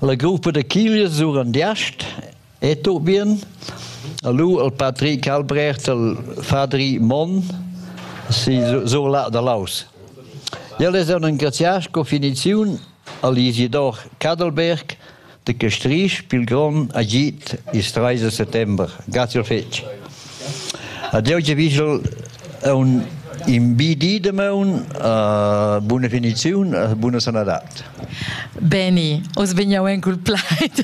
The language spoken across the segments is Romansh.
La gruppa da chiglias Surandiast è tut bien. E lu il Patrick Albrecht, il Fadri Monn, si sur là da Laus. Ja les han engrazià sco finiziun a l'Isidor Cadelberg de Castrisch pil grond agit il 13 settember. Grazie fetg. Adieu Giavigel è un invidi de meun uh, buna finiziun e buna sanadat. Beni, os vegniau en cul plaid.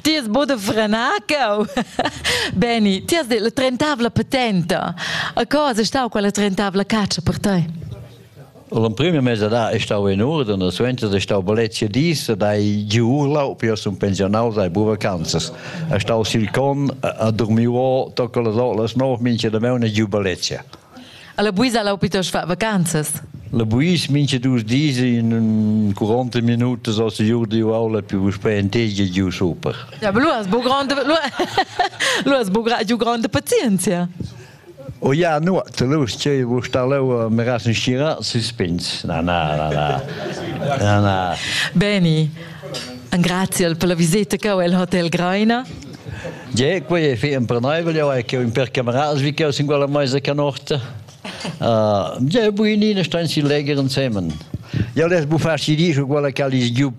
ti es bod frenar cau. Beni, ti has la trentavla patenta. A cosa stau quella trentavla caccia per te? L'emprima mesadà è stau in urden e suenter è stau bellezia dis ed hai giu urlau per sun pensionaus ai bu vacanzas. È stau sil con a dormir o tocca las olas nov mincha da meuna giu bellezia. Alla buisa lau pitos fa vacanzas. La buis mincha dus dis in 40 minutos o se giu di aula più puspè entegia giu super. Ja, lu has bu grande lu, lu has bu giu grande pazienzia. O ja nuot, lur che vus sta leu me rasen schira suspins. Na na na na. Na na. Beni, grazie per la visita che ho al Hotel Greiner. Ja, quei è fi impreneibel, ja è che un per cameras vi che ho singula meisa canorta. Uh, ja, buinina stan si leger insieme. Ja les bufar si dice quella che ha gli giù